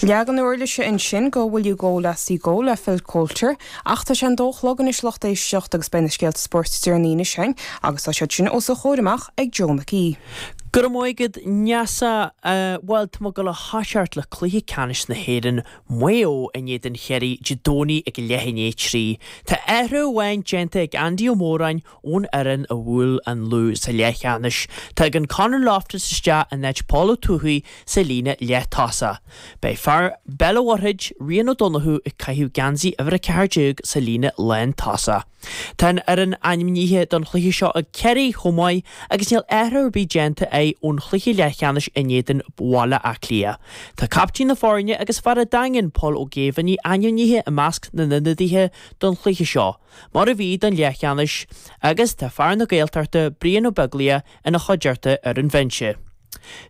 Leagan uirlise ansin de Will You Go Lassie Go le Phil Coulter. Ach tá sé an dó a chlog anois a lucht éisteachta agus beidh na scéalta spóirt deireanacha againn agus tá siad sin os a chomhair amach ag Joe McHugh. Go raibh maith agat Neasa. Bhuel tá muid ag gabháil a thoiseacht le cluiche ceannais na hÉireann, Maigh Eo in éadan Chiarraí Dé Domhnaigh ag a leath i ndiaidh a trí. Tá athrú amháin déanta ag Andy Ó Móráin Ón fhoireann a bhuail an Lú sa leath cheannais, tagann Conor Loftus isteach in áit Paul Ó Tuathaigh sa líne leathtosach. Beidh fear Bhéal an Mhuirthid, Rian Ó Donnchú ag caitheamh geansaí uimhir 14 sa líne lántosach. Tá an fhoireann ainmnithe don chluiche seo ag Ciarraí chomh maith agus níl athrú ar bith déanta acu ón chluiche leathcheannais in éadan Bhaile Átha Cliath. Tá captaen na foirne agus fear an Daingin, Pól Ó Géibheannaigh ainmnithe i measc na n-ionadaithe don chluiche seo. mar a bhí don leathcheannais, agus tá fear na Gaeltachta Brian Ó Beaglaoich ina chuideachta ar an bhinse.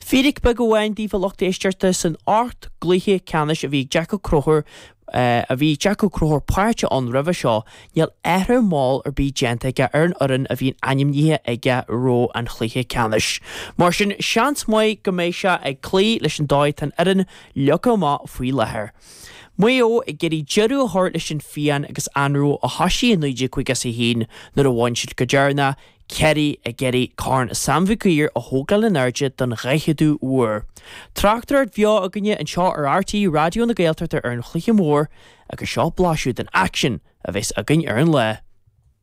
Fíric beag amháin daoibh a lucht éisteachta, san ocht gcluiche ceannais a bhí Jack Ó Conchúir a bhí Jack Ó Conchúir páirteach ann roimhe seo, níl athrú mall ar bith déanta aige ar an fhoireann a bhíonn ainmnithe aige roimh an chluiche ceannais. Mar sin, seans maith go mbeidh sé ag cloí leis an dóigh atá an fhoireann leagtha amach faoi láthair. Maigh Eo ag iarraidh deireadh a thabhairt leis an phian agus anró a thoisigh i 1951 nuair a bhain siad go deireanach Ciarraí ag iarraidh Corn Sam Mhig Uidhir a thógáil in airde don dhaicheadú uair. Tráchtaireacht bheo againne anseo ar RTÉ Raidió na Gaeltachta ar an chluiche mór agus seo blaiseadh den aicsean a bheas againn ar an lá.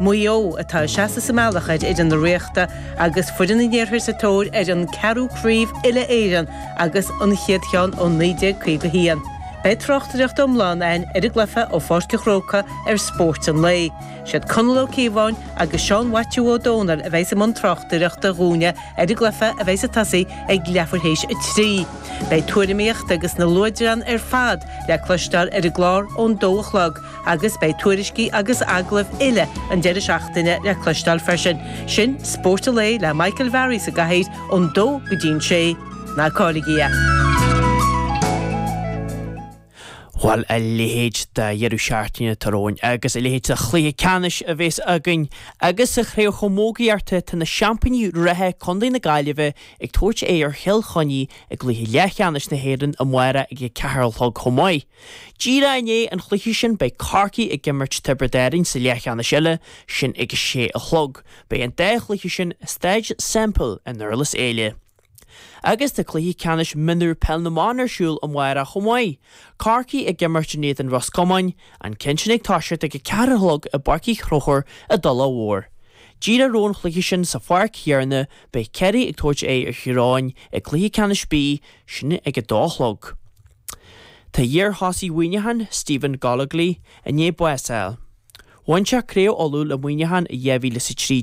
Maigh Eo, atá ag seasamh sa mbealach ar fhoireann na Ríochta agus foireann an iarthair sa tóir ar an gceathrú craobh uile-Éireann agus an chéad cheann ó 1951. Beidh tráchtaireacht iomlán ann ar an gcluiche ó Pháirc an Chrócaigh ar Spórt an Lae. Siad Conall Ó Cíobháin agus Seán Mhaitiú Ó Domhnaill a bheidhs i mbun tráchtaireachta dhúinne ar an gcluiche a bheidhs ag tosaí ag leathuair théis a trí. Beidh tuairimíocht agus na luaidreáin ar fad le cloisteáil ar an gclár ón dó a chlog. Agus beidh tuairiscí agus agallaimh uile an deireadh seachtaine le cloisteáil freisin. Sin Spórt an Lae le Michael Varley sa gcathaoir ón dó go dtí'n sé. Ná cailligí é! Bhuel, a leithéid de dheireadh seachtaine atá romhainn agus a leithéid de chluiche ceannais a bhéas againn. Agus sa Chraobh Chamógaíochta, tá na seaimpíní reatha, Contae na Gaillimhe, ag tabhairt aghaidh ar Chill Chainnigh i gcluiche leathcheannais na hÉireann amárach ag a 4 a chlog chomh maith. Díreach i ndiaidh an chluiche sin beidh Corcaigh ag imirt Tiobraid Árainn sa leathcheannais eile, sin ag a sé a chlog. Beidh an dá chluiche sin i Staid Semple i nDurlas Éile. Agus tá cluiche ceannais mionúr Peil na mBan ar siúl amárach chomh maith, Corcaigh ag imirt in éadan Ros Comáin, an ceann sin ag toiseacht ag a ceathair a chlog i bPáirc Uí Chonchúir i dTulach Mhór. Díreach roimh an chluiche sin sa pháirc chéarna beidh Ciarraí ag tabhairt aghaidh ar Thír Eoghain i gcluiche ceannais B, sin ag a dó a chlog. Tá iar-thosaí Mhuineacháin, Stephen Gollogly, i ndiaidh bás a fháil. Bhain sé Craobh Uladh le Muineachán i 2003.